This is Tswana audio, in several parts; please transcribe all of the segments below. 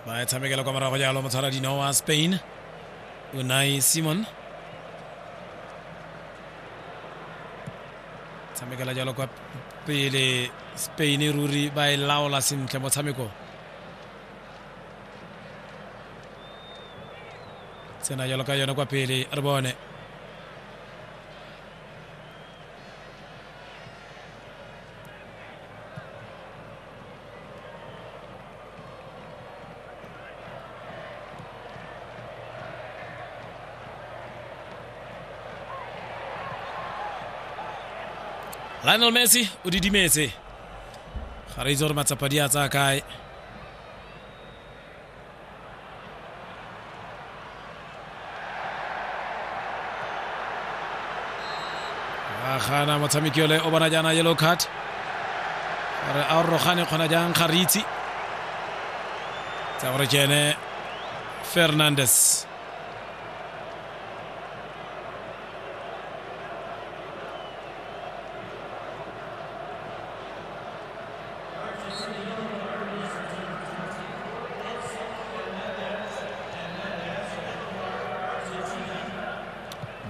ba e tshamekela kwa morago jalo motshwara dino wa spain unai simon tshamekela jalo kwa pele spain ruri ba e laola sentle motshameko tsena jalo ka yone kwa pele re bone lionel messi o didimetse ga re itse gore matsapa di a tsaya kae gana motshameki ole o bona jaana yellow card re a rogane kgona jang ga re itse tsa gore ke ene fernandes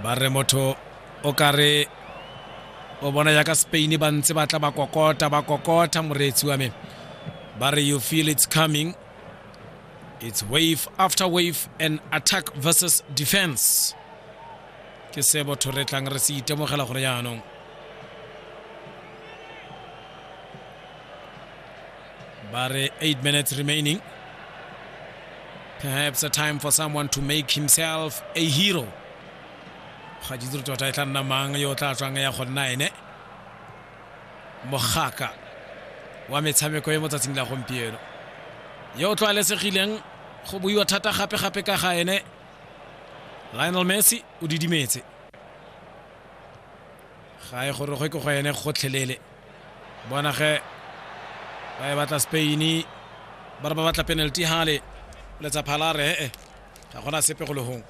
ba re motho o ka re o bona yaka spain ba ntse ba tla ba kokota ba kokota moreetsi wa me ba re you feel it's coming it's wave after wave and attack versus defense ke se botho re tlang re se itemogela gore yaanong But uh, eight minutes remaining. Perhaps a time for someone to make himself a hero. ga ke itse tota e tla nna mang yo o tla tswang ya go nna ene mogaka wa metshameko e mo tsatsing la gompieno yo o tlwaelesegileng go buiwa thata gape-gape ka ga ene lionel messi o didimetse ga e gorogwe ke go ene gotlhelele bona ge ba e batla spain ba re ba batla penalty hale letsa phalare ee ga gona sepe go legong